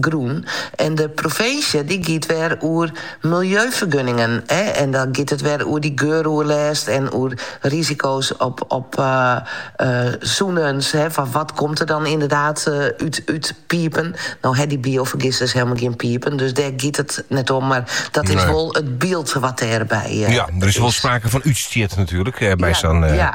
Grûn. En de provinsje dy giet wer oer miljeufergunningen. En dan giet it wer oer dy geuroerlêst en oer risiko's op sûnens. Fan wat komt der dan ynderdaad út pipen? No ha dy biofergisters helemaal gjin pipen, dus dêr giet it net om. Mar dat is wol it byld wat dêrby is. Ja, der is wol sprake fan útstjit natuerlik by sa'n. Ja, ja.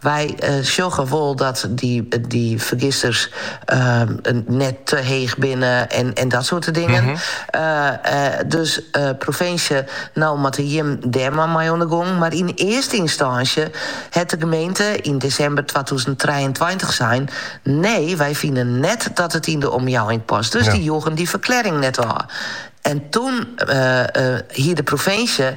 Wy sjogge wol dat dy fergisters net te heech binne en dat soarte dingen. Dus provinsje, no moatte jim dêr mar mei oan de gong. Mar yn earste ynstânsje hat de gemeente yn desimber twatûzen trijeentweintich sein, nee, wy fine net dat it yn de omjouwing past. Dus dy joegen dy ferklearring net ôf. En toen hie de provinsje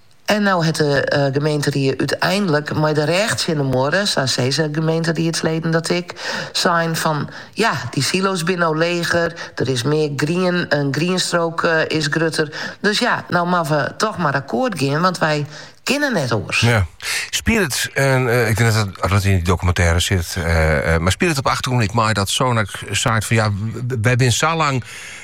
En no hat de gemeenterie úteinlik mei de rêch tsjin de muorre, sa sizze gemeenteriedsleden dat ek, sein fan, ja, dy silo's binne no leger, der is mear grien, in grienstrook is grutter, dus ja, no moatte we toch mar akkoart gean, want wy kinne net oars. Ja. Spilet it, en uh, ik tink dat dat yn dy dokumintêre sit, uh, mar spilet it op 'e achtergrûn ek mei dat Sonac sei fan ja, wy binne sa lang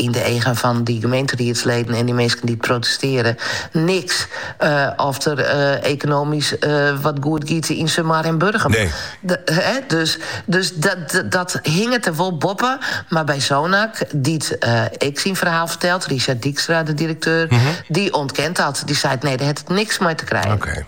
yn de eagen fan dy gemeenteriedsleden en dy minsken dy't protestearje, niks eh, oft der eh, ekonomysk eh, wat goed giet yn Sumar en Burgum. Nee. De, hè, dus dus dat, dat, dat hinget er wol boppen. Mar by Sonac, dy't eh, ek syn ferhaal fertelt, Richard Dijkstra, de direkteur, mhm. dy ûntkent dat. Dy seit: nee, dêr hat it niks mei te krijen. Oké.